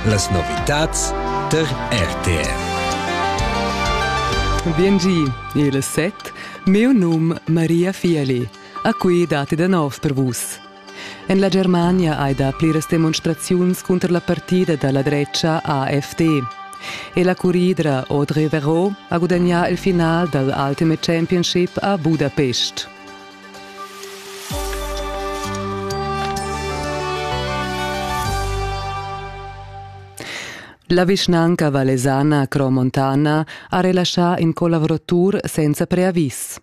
Las novitads tar RTR. Biengi, il set. Meu num Maria Fieli. A qui dati da nov per vus. En la Germania hai da pliras demonstraziuns cunter la partida da la drecha AfD. E la curidra Audrey Verreau ha gudagnà il final dal Ultimate Championship a Budapest. La vischnanca valesana Cromontana ha relaschà in colavratur senza preavis.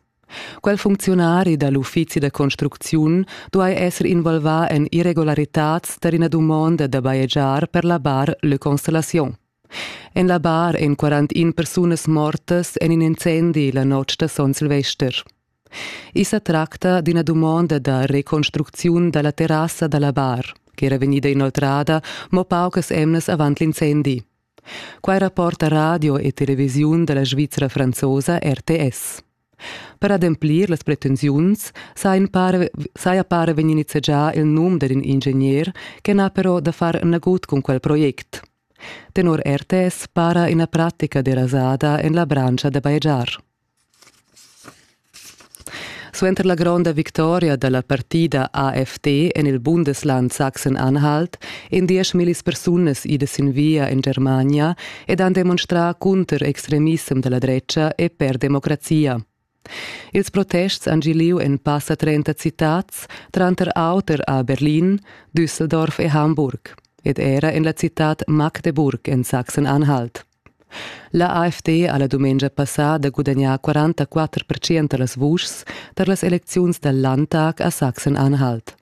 Quel funcziunari da l'uffizi da construcziun duai esser involvà en irregularitads tar ina dumonda da bajegiar per la bar Le Constellation. En la bar èn 41 persunas mortas en in incendi la notg da Son Silvester. I sa tracta d'ina dumonda da reconstrucziun dalla terrassa dalla bar, che era vegnida inoltrada mo paucas emnas avant l'incendi. Quai rapporta radio e televisiun dalla Svizra franzosa RTS. Per ademplir las pretensiuns saja pare vegni nizzegià il num dad in ingegner che n'ha però da far nagut cun quel project. Tenor RTS para ina pratica derasada en la branscha da bajegiar. Suenter la gronda victoria dalla partida AFT en il Bundesland Sachsen-Anhalt èn dieschmillis persunas idas sin via en Germania ed han demonstrà cunter extremissem da la dretga e per democrazia. Ils protests han gì lieu en passa 30 citads, tranter auter a Berlin, Düsseldorf e Hamburg, ed era en la citad Magdeburg en Sachsen-Anhalt. La AfD ha la dumengia passada gudagnà 44 percent da las vuschs tar las elecziuns dal Landtag a Sachsen-Anhalt.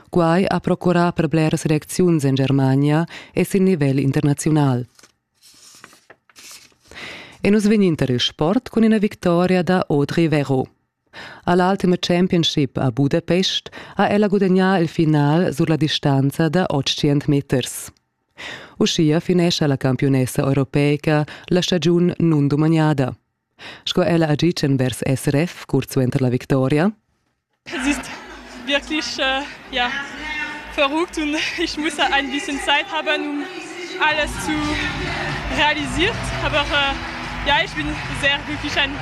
Quai ha procurà per bleras elecziuns en Germania e sin nivel internaziunal. E nus vegnin tar il sport cun ina victoria da Audrey Vero. A l'ultima championship a Budapest ha ella gudagnà il final sur la distanza da 800 meters. Uschia finescha la campiunessa europeica la stagiun nundumagnada. Sco ella ha ditg envers SRF curt suenter la victoria. Es ist wirklich äh, ja, verrückt und ich muss ein bisschen Zeit haben, um alles zu realisiert. Aber äh, ja, ich bin sehr glücklich, eine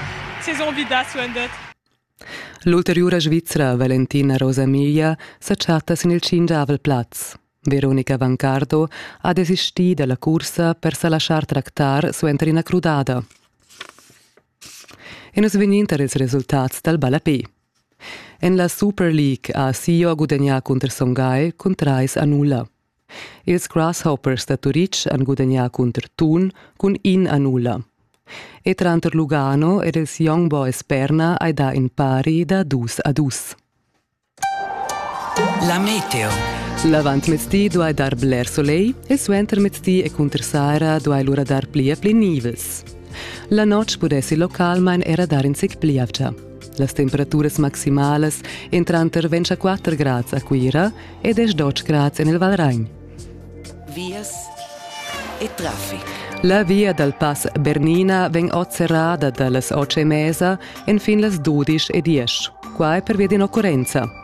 Saison wieder zu enden. L'ulteriura Svizzera Valentina Rosamiglia sa chatta sin il tschingiavel plaz. Veronica Vancardo ha desistì dalla cursa per sa laschar tractar suenter ina crudada. E nus vegnin tar ils resultats dal ballapé. En la Super League ha Sio gudagnà cunter Son Gagl cun trais a nulla. Ils Grasshoppers da Turitg han gudagnà cunter Thun cun in a nulla. E tranter Lugano ed ils Young Boys Perna hai dà in pari da dus a dus. La Meteo. L'avantmezdi duai dar bler soleil e suentermezdi e cunter saira duai lura dar pli e pli nivels. La notg pudessi localmain era dar in zic pli avgia. Las temperaturas maximalas èn tranter 24 grads a Cuira e 18 grads en il Valragn. Vias e traffic. La via dal pass Bernina vegn oz serrada da las otg e mesa enfin las dudisch e diesch. Qua è pervia d'in occurrenza.